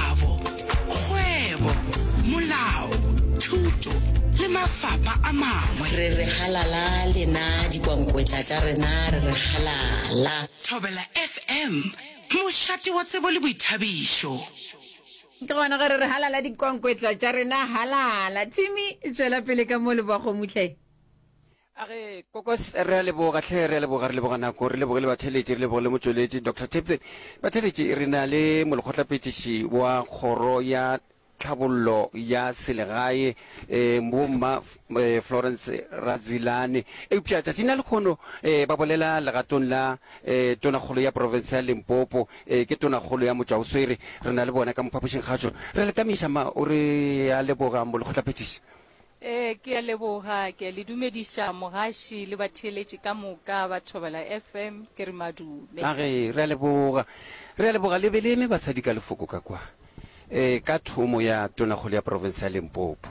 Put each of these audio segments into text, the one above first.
Kabo, Kgwebo, Molao, Thuto le mafapa a mangwe. Re re halala lena dikwankwetla tša rena re re halala. Thobela FM, mošate wa tsebo le boithabišo. Ke gona ge re re halala dikwankwetla tša rena halala. Timmy, tšwela pele ka mo leboago Mutleng. A re, Kokos, re a leboga, hle, re a leboga, re leboga nako, re leboge le batheletši, re leboge le motšweletši, Doctor Tipton. Batheletši, re na le molekgotlaphethiši wa Kgoro ya Tlhabollo ya Selegae, eh, Bomma eh, Florence Radzilane. Eupša tšatšing la lekgono eh, ba bolela legatong la eh, Tonakgolo ya Profense ya Limpopo, eh, ke Tonakgolo ya Motšwaoswere. Re na le bona ka mophapošing gašo. Re le ka meša, ma, o re a leboga, molekgotlaphethiši. Ee, ke a leboga. Ke a le dumediša mogaši le batheeletši ka moka ba Thobela FM. Ke re madume. Age, re a leboga. Re a leboga. Le be le eme basadi ka lefoko ka kwa, ee, ka thomo ya Tonakgolo ya Profense ya Limpopo.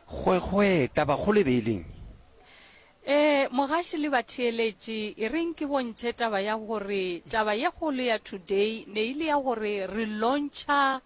Kgwekgwee, tabakgolo e be e leng? Ee, mogaši le batheeletši, e reng ke bontšhe taba ya gore taba ye kgolo ya today ne e le ya gore re lontšha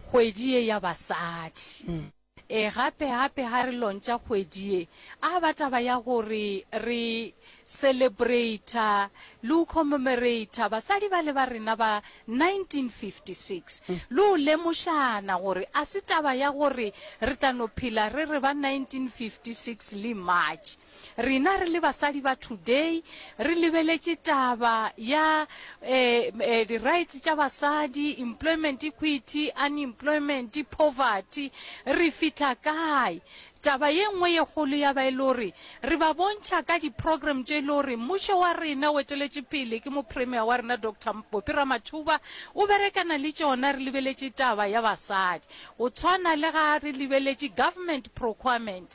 kgwedi ye ya basadi. Ee, gape, gape ga re lontša kgwedi ye, a ba taba ya gore re celebrata le go commemorata basadi bale ba rena ba 1956, le go lemošana gore a se taba ya gore re tla no phela re re ba 1956 le March. Rena re le basadi ba today re lebeletše taba ya eh, eh, di rights tša basadi, employment equity, unemployment, poverty, re fihla kae? taba ye nngwe ye kgolo ya ba e le gore re ba bontšha ka di-program tše e le gore mmušo wa rena o eteletše pele ke mopremier wa rena dr bopi ramathuba o berekana le tšona re lebeletše taba ya basadi o tshwana le ga re lebeletše government procurement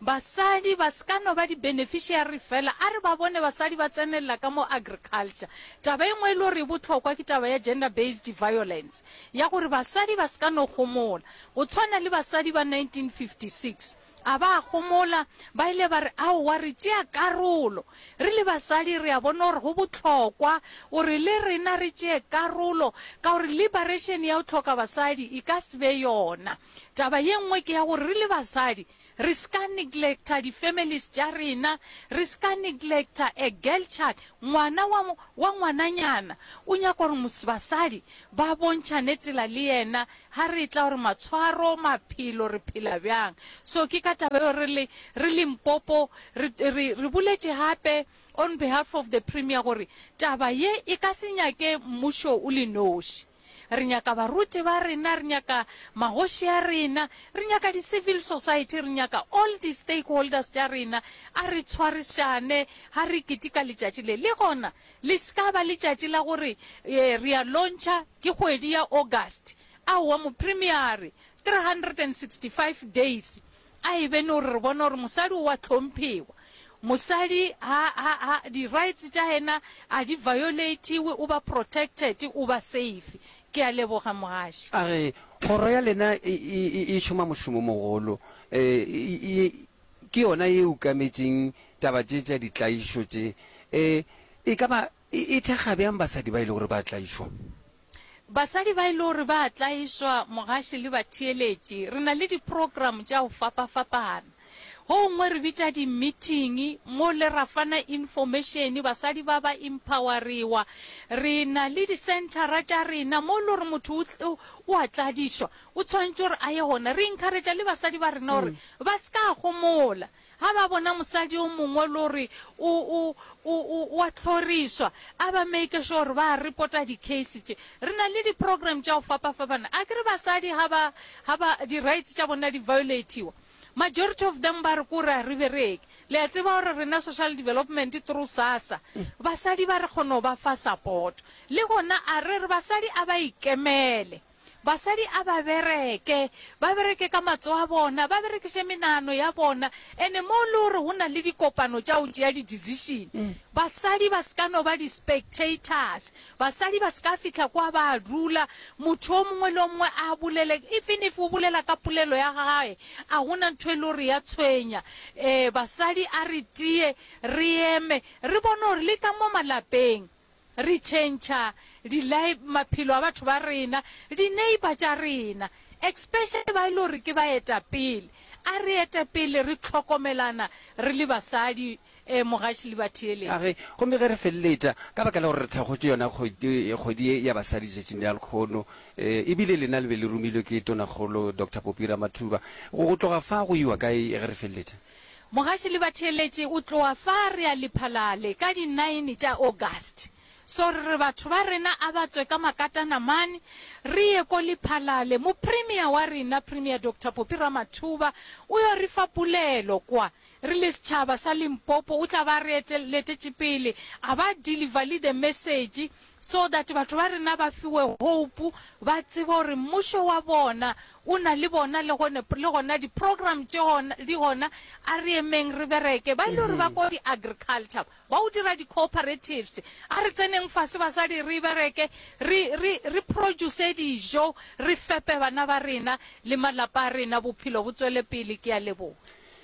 Basadi ba se ka no ba di-beneficiary fela. A re ba bone basadi ba tsenelela ka mo agriculture. Taba e nngwe e le gore e bohlokwa ke taba ya gender based violence, ya gore basadi ba se ka no gomola. Go tshwana le basadi ba 1956, a ba a gomola, ba ile ba re, Aowa, re tšea karolo. Re le basadi re a bona gore go bohlokwa gore le rena re tšee karolo, ka gore liberation ya go hloka basadi e ka se be yona. Taba ye nngwe ke ya gore re le basadi Re s'ka neglecta di families tša rena, re s'ka neglecta a girl child, ngwana wa, wa ngwananyana. O nyaka gore mos, basadi ba bontšhane tsela le yena ha re etla gore matshwaro, maphelo, re phela bjang. So ke ka taba eo re le, re Limpopo re, re, re boletše gape on behalf of the Premier gore taba ye e ka se nyake mmušo o le noši. Re nyaka baruti ba rena, re nyaka magoši a rena, re nyaka di-civil society, re nyaka all di-stakeholders tša rena. A re tshwarišane ga re ketika letšatši le. Le gona le se ka ba letšatši la gore e, re a launcha ke kgwedi ya August. Aowa, Mopremiare, 365 days A e be no re re bona gore mosadi o a tlhomphewa. Mosadi ha, ha, ha, di-rights tša ena a di violatiwe, o ba protected, o ba safe. Ke a leboga, Mogaši. A re, Kgoro ya lena e, e, e, e šoma mošomo mogolo. E, e, e, ke yona ye e ukametšeng taba tše tša ditlaišo tše. E, e ka ba e, e thekga bjang basadi ba e le gore ba tlaišwa? Basadi ba e le gore ba a tlaišwa, mogaši le batheeletši, re na le diprogramo tša go fapafapana. Go gongwe re bitša dimithingi mo le ra fana infomašene, basadi ba ba impawariwa. Re na le disenthara tša rena mo e le gore motho o tl, o a tladišwa, o tshwanetše gore a ye gona. Re inkharetša le basadi ba rena gore ba se ka gomola. Ga ba bona mosadi yo mongwe le gore o, o, o, o, o a hlorišwa, a ba make sure gore ba a reporta di-case tše. Re na le di-program tša go fapafapana. A ke re basadi ga ba, ga ba, di-rights tša bona di violatiwa, majority of them ba re ke gore a re bereke. Le a tseba gore rena social development through SASSA, basadi ba re kgona go ba fa support. Le gona a re re basadi a ba ikemele. Basadi a ba bereke, ba bereke ka matsogo a bona, ba berekiše menano ya bona. Ene mo le gore go na le dikopano tša go tšea di-decision, basadi ba se ka no ba di-spectators. Basadi ba se ka fihla kwa ba dula, motho o mongwe le o mongwe a bolele. Even if o bolela ka polelo ya gagwe, a go na ntho e le gore ya tshwenya. Ee, basadi a re tiye, re eme, re bone gore le ka mo malapeng Re tšhentšha di li maphelo a batho ba rena, di neighbour tša rena, especially ba e le gore ke baetapele. A re ete pele re hlokomelana re le basadi, eh, Mogaši le batheeletši. Age, gomme ge re feleletša, ka baka la gore re thakgotše yona kgwedi, kgwedi ye ya basadi letšatšing la lkhono, eh, ebile lena le be le romilwe ke Tonakgolo Doctor Poppy Ramathuba, go, go tloga fa go iwa kae ge re feleletša? Mogaši le batheeletši o tloa fa re a Liphalale ka di nine tša August. So re re batho ba rena a ba tswe ka makatana mane re ye ko Liphalale, mo Premier wa rena Premier Doctor Poppy Ramathuba o yo re fa pulelo kwa. Re le setšhaba sa Limpopo o tla ba re letetše pele a ba deliver le the message so that batho ba rena ba fiwe hope ba tsebe gore mmušo wa bona O na le bona le gone, le gona di program tše gona, di gona. A re emeng re bereke. Ba e le gore ba ko di agriculture, ba o dira di cooperatives. A re tseneng fase basadi re bereke, re, re, re produce dijo, re fepe bana ba rena le malapa a rena, bophelo bo tswele pele. Ke a leboga.